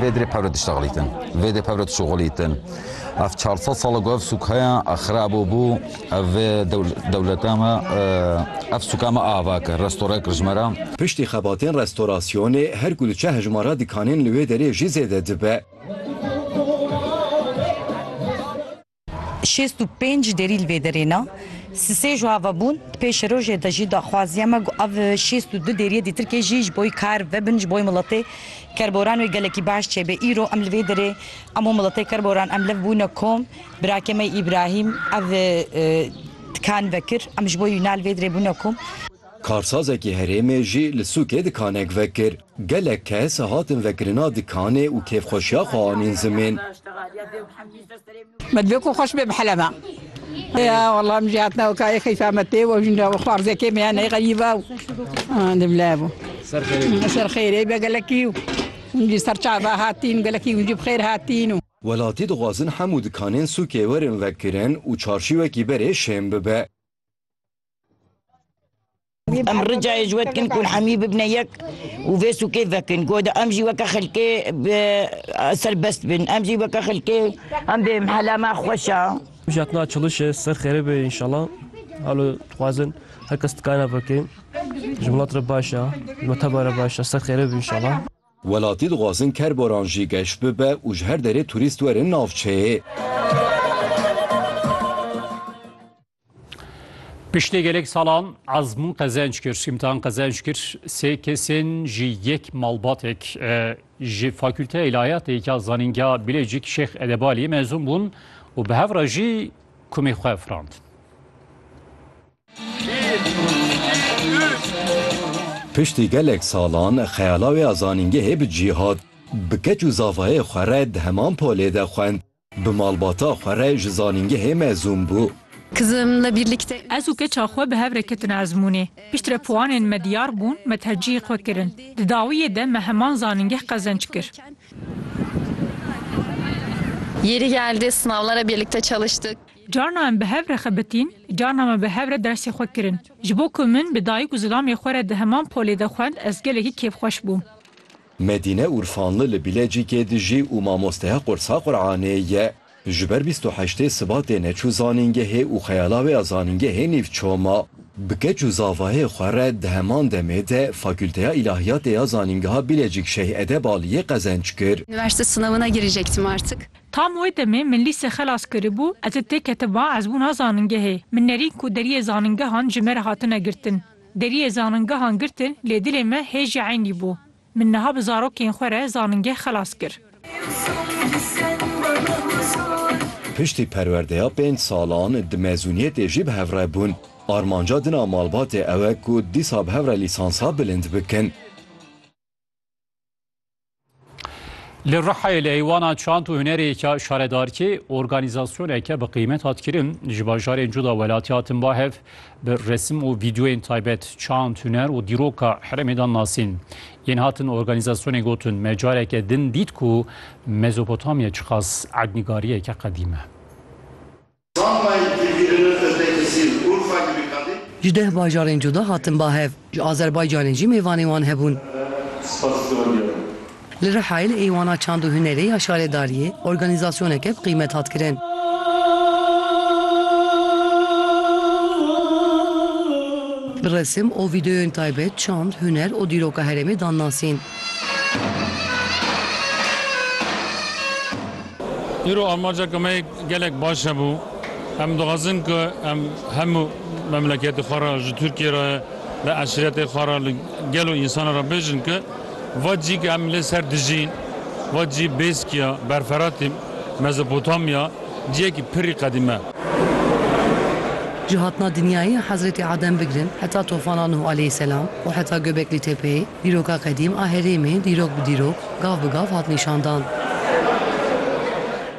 Vê dirê pevre diştexlîtin, vê dê pevre dişuxulîtin. Ev çar sed sal e ku ev sûk heye, ev xirab û bû. Ev vê dewleta me, ev sûka me ava kir, restore kir ji me re. Piştî xebatên restorasyonê her ku diçe hejmara dikanên li wê derê jî zêde dibe. Şêst û pênc derî li vê derê ne. Sisê ji ava bûn, di pêşerojê de jî daxwaziya me ku ev şêst û du deriyê dîtirkê jî ji bo kar vebin ji bo miletê kerboran wê gelekî baş çêbe. Îro em li vê derê hemû miletê kerboran em lev bûne kom. Birake me Îbrahîm ev dikan vekir. Em ji bo wî na li vê derê bûne kom. Karsazekî herêmê jî li sûkê dikanek vekir. Gelek kes hatin vekirina dikanê û kêfxweşiya xwe anîn zimên. Me divê ku xweş bê bi helema. Ya wallah min jî hatina weka yê xeyfa me tê we jî nira wexta rizekê me ya ney xerîba û di bila bû. Ser xêrê be. Ser xêrê be gelekî û hûn jî ser çava hatîn gelekî hûn jî bi xêr hatîn û. Welatî dixwazin hemû dikanên sûkê werin vekirin û çarşî wekî berê şên bibe. Em ricayê ji we dikin ku hemî bibine yek û vê sûkê vekin. Ku de em jî weke xelkê bi serbest bin. Em jî weke xelkê em bê mehela me xweş e. Mijatna çalış e, ser xêrê be înşallah. Halo dixwazin her kes dikare veke. Ji welat re baş e, ji meteba re baş e, ser xêrê be înşallah. Welatî dixwazin kerboran jî geş bibe û ji her derê turîst werin navçeyê. Piştê gelek salan ezmûn qezenc kir, sîmtan qezenc kir sê kesên ji yek malbatek ji Fakülteya Îlahiyatê ya Zanîngeha Bilêcik Şêx Edebaliyê mezûn bûn û bi hev re jî kumê xwe firand. Piştî gelek salan xeyala wê ya zanîngehê bi cî hat. Bi keç û zavayê xwe re di heman polê de xwend Bi malbata xwe re ji zanîngehê mezûn bû. Ez û keça xwe bi hev re ketin ezmûnê. Piştre puanên me diyar bûn, me tercîhê xwe kirin. Di dawiyê de me heman zanîngeh qezenc kir. Carna em bi hev re xebitîn, carna me bi hev re dersê xwe kirin. Ji bo ku min bi dayik û zilamê xwe re di heman polê de xwend ez gelekî kêfxweş bûm. Medîne Urfanli li Bilêcîkê dijî û mamosteya qursa Quranê ye. Ji ber bîst û heştê Sibatê neçû zanîngehê û xeyala wê ya zanîngehê nîv çû ma. Bi keç û zavayê xwe re di heman demê de Fakûlteya Îlahiyatê ya Zanîngeha Bilêcîk Şeyh Edeb Aliyê qezenc kir. Üniversite sınavına girecektim artık. Tam wê demê min lîse xelas kiribû, ez ê têketibam ezbûna zanîngehê. Min nerîn ku deriyê zanîngehan ji me re hatine girtin. Deriyê zaningehan girtin lê dilê me hê jî eynî bû. Min niha bi zarokên xwe re zaningeh xelas kir. Piştî perwerdeya pênc salan di mezûniyetê jî bi hev re bûn. Armanca din a malbatê ew e ku dîsa bi hev re lîsansa bilind bikin. Li Rihayê li Eywana Çand û Hunerêka Şaredarkê organîzasyoneke bi qîmet hat kirin. Ji bajarên cuda welatî hatin ba hev bi resim û vîdeoyên taybet çand, huner û dîroka herêmê dan nasîn. Yên hatin organîzasyonê gotin me careke din dît ku Mezopotamya çiqas ednîgariyeke qedîm e. Ji deh bajarên cuda hatin ba hev, ji Azerbaycanê jî mêvanên wan hebûn. Li Rihayê li Êwana Çand û Hunerê ya Şaredariyê organîzasyoneke bi qîmet hat kirin. Bi resim û vîdeoyên taybet çand, huner û dîroka herêmê dan nasîn. Îro armanceke me yê Gelek baş hebû. Em dixwazin ku em hemû memleketê xwe re ji Tirkiyê re li eşretê xwe re li gel û însanan re bêjin ku va cî ku em lê ser dijîn va cî bêskiya berferatê Mezopotamya ciyekî pirrî qedîme. Ji hatina dinyayê Hezretê Adem bigirin heta tofana Nuh aleyh selam û heta Göbekli Tepeyê dîroka qedîm a herêmê dîrok bi dîrok, gav bi gav hat nîşandan.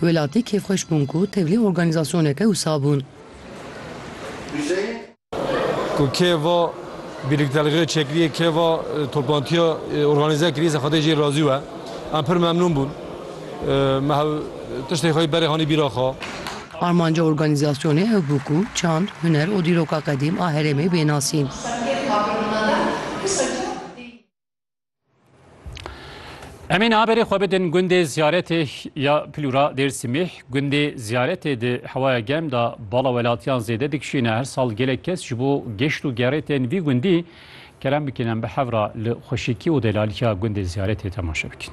Welatî kêfxweş bûn ku tevlî organîzasyoneke wisa bûn. Ku kê va birliktelgê çekirîyê, kê va toplantîya organîze kirî zexetê jê razî we. Em pir memnûn bûn. Me hev tiştê xweyî berê hanî bîra xwe. Armanca organîzasyonê ew bû ku çand, huner û dîroka qedîm a herêmê bê nasîn. Emîn haberê xwe bidin gundê ziyaretê ya Plûra Dêrsimîh gundê ziyaretê di hewaya gem da bala welatiyan zêde dikişîne her sal gelek kes ji bo geşt û gerê tên vî gundî kerem bikin em bi hevra li xweşikî û delaliya gundê ziyaretê temaşe bikin.